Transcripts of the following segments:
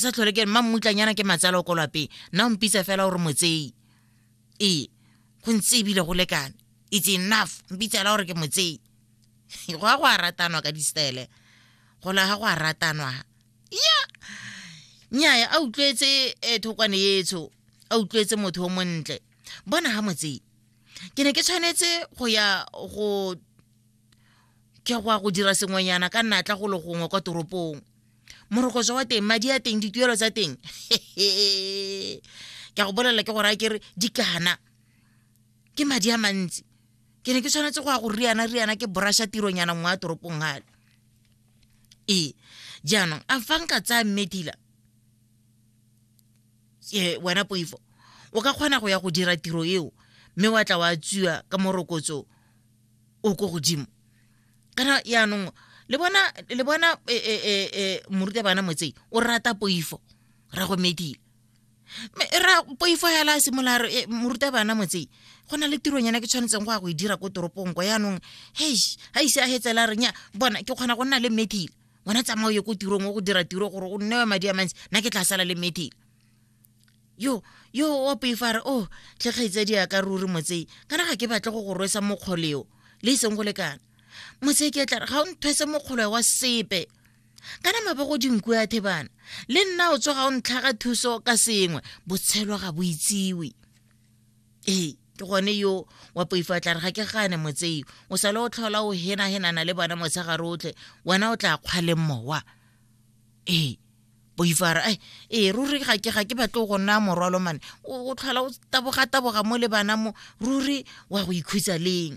ke sa tlhole ke mma mmutlanyana ke matsala o ko lapeng nna o mpitsa fela gore motseyi ee go ntse ebile go lekane it's enough mpitsela gore ke motseyi go ya go a ratanwa ka distele go laga go a ratanwa ya nnyaya a utlwetse eh, thokwane etsho a utlwetse motho o montle bona ga motseyi ke ne ke tshwanetse go ya go ke go ya go dira sengwenyana ka natla go le gongwe kwa toropong morokotso wa teng madi a teng dituelo tsa teng ke a go bolelela ke gore a kere di kana ke madi a mantsi ke ne ke tshwanetse go ya go riana riana ke borasha tironyana nngwe ya toropong gale ee jaanong a fa nka tsaya mmedila e wena poifo o ka kgona go ya go dira tiro eo mme wa tla wa tswiwa ka morokotso o ko godimo kana yaanong le bona le bona e, e, e, e, morutabana motsei o rata poifo ra go medile ra poifo ya la simolola re eh, moruta bana motsei go na le tironyana ke tshwanetseng go ya go e dira ko toropong ko yaanong hei ga ise a hetsela renya bona ke kgona go nna le methile wena tsamao ye ko tirong o go dira tiro gore o nnewe madi a mantsi nna ke tla sala le methile yo yo wa poifare o oh, tle kgaitsadi ya ka ruri motsei kana ga ke batle go go rwesa mokgoleo le iseng go lekana motsei ke tla re ga o nthwese mokgolo wa sepe kana mabe go dinku ya thebana le nna o tsoga o ntlhaga thuso ka sengwe botshelo ga bo itsiwe ee ke gone yo wa poifa tla re ga ke gane motsei o sale o tlhola o henahenana le bona motshegare otlhe wena o tla kgwaleng mowa ee boifara ai ee ruri ga ke ga ke batle go nna morwalo mane o tlhola o taboga-taboga mo le bana mo ruri wa go ikhutsa leng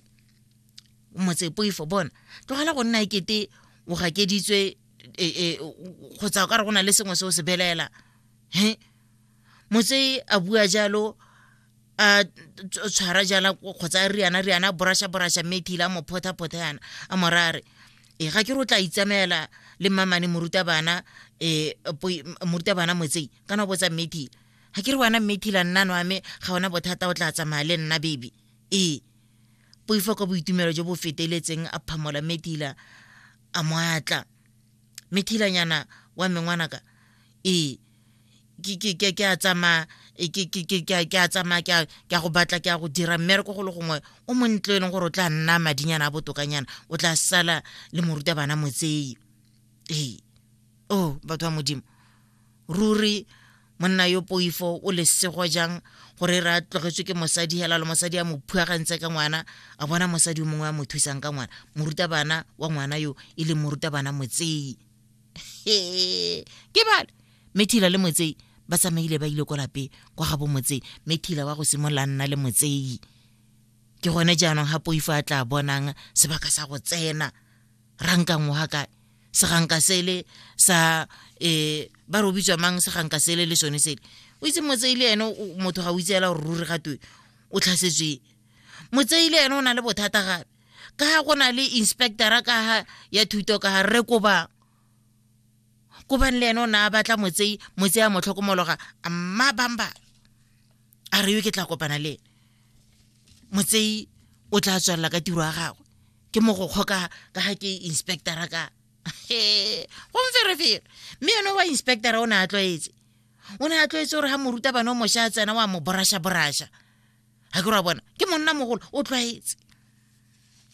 motse poifo bona tlogela go nna ekete o gakeditswe e, e, kgotsa o ka re go na le sengwe se o se belela he motse a bua jalo a tshwara jala kgotsa riana riana borasha borasha mme thile a mo phothaphotha yana a morare e eh, ga ke re o tla itsamaela le mmamane morutabana um morutabana motsei kana o botsa mmethile ga ke re wena mmethile nnano ame ga ona bothata o tla tsamaya le nna baby ee poifo ka boitumelo jo bo feteletseng a phamola methila a moatla methilanyana wa mengwanaka ee ke a tsamaya ke a tsamaya ke a go batla ke a go dira mmereko go le gongwe o montle e leng gore o tla nna madinyana a botokanyana o tla sala le morutabana motsei ee o oh, batho ba modimo ruri monna yo poifo o lesego jang gore re a tlogetswe ke mosadi hela le mosadi a mo phuagantse ka ngwana a bona mosadi o mongwe a mo thusang ka ngwana morutabana wa ngwana yo e leng morutabana motsei ke bale methila le motsei ba tsamaile ba ile ko lape kwa ga bomotsei methila wa go simolola nna le motsei ke gone jaanong ga poifo a tla bonang sebaka sa go tsena rankang wa kae seganka sele sa um ba re o bitswa mang seganka sele le sone sele o itse motsei le ene motho ga o itseela gore ruri gatwe o tlhasetswe motsei le ene o na le bothata gape ka ga go na le inspectora ka ga ya thuto ka ga rre koba kobang le ene o ne a batla motsei motsei a mo tlhokomologa mma bamba a re yo ke tla kopana le ene motsei o tla tswelela ka tiro ya gagwe ke mogokgo ka ga ke inspectora ka gomferefere mme yone wa inspectora o ne a tlwaetse o ne a tlwaetse gore ga morutabana o mošwa a tsena wa mo borasha borasha ga ke ra bona ke monna mogolo o tlwaetse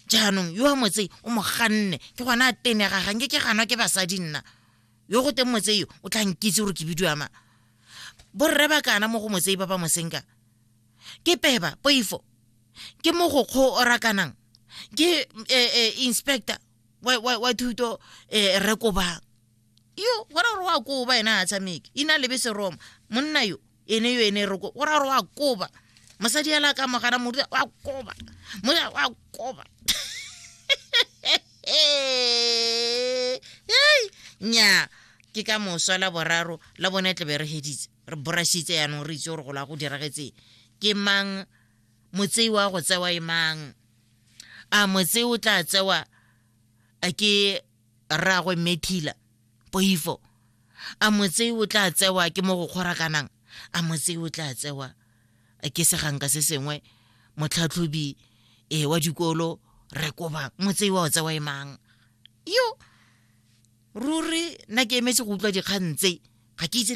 jaanong yo wa motse o mo ganne ke gona a tenega ganke ke ganwa ke basadi nna yo go teng motse yo o tla nkitse gore ke bidiwa ma borre ba kana mo go motse ba ba mosenka ke peba poifo ke mo go kgo o rakanang ke eh, eh, inspector wa thuto eh, rekobang yo gona gore wa koba ena a tshameke ina lebe seroma monna yo ene yo ene roko o ra gore wa koba mosadi ela ka mogana modu wa koba moya wa koba nya ke ka moswa la boraro la bone tlebe re heditse re borashitse yanong re itse gore go la go diragetseng ke mang motsei wa go tsewa e mang a motsei o tla tsewa ke rraagwe methila poifo a motse o tla tsewa ke mo go kgorakanang a motse o tla tsewa ke seganka se sengwe motlhatlhobi e wa dikolo re koba motse wa o tsewa e mang yo ruri nna ke emetse go utlwa dikgang tse ga ke itse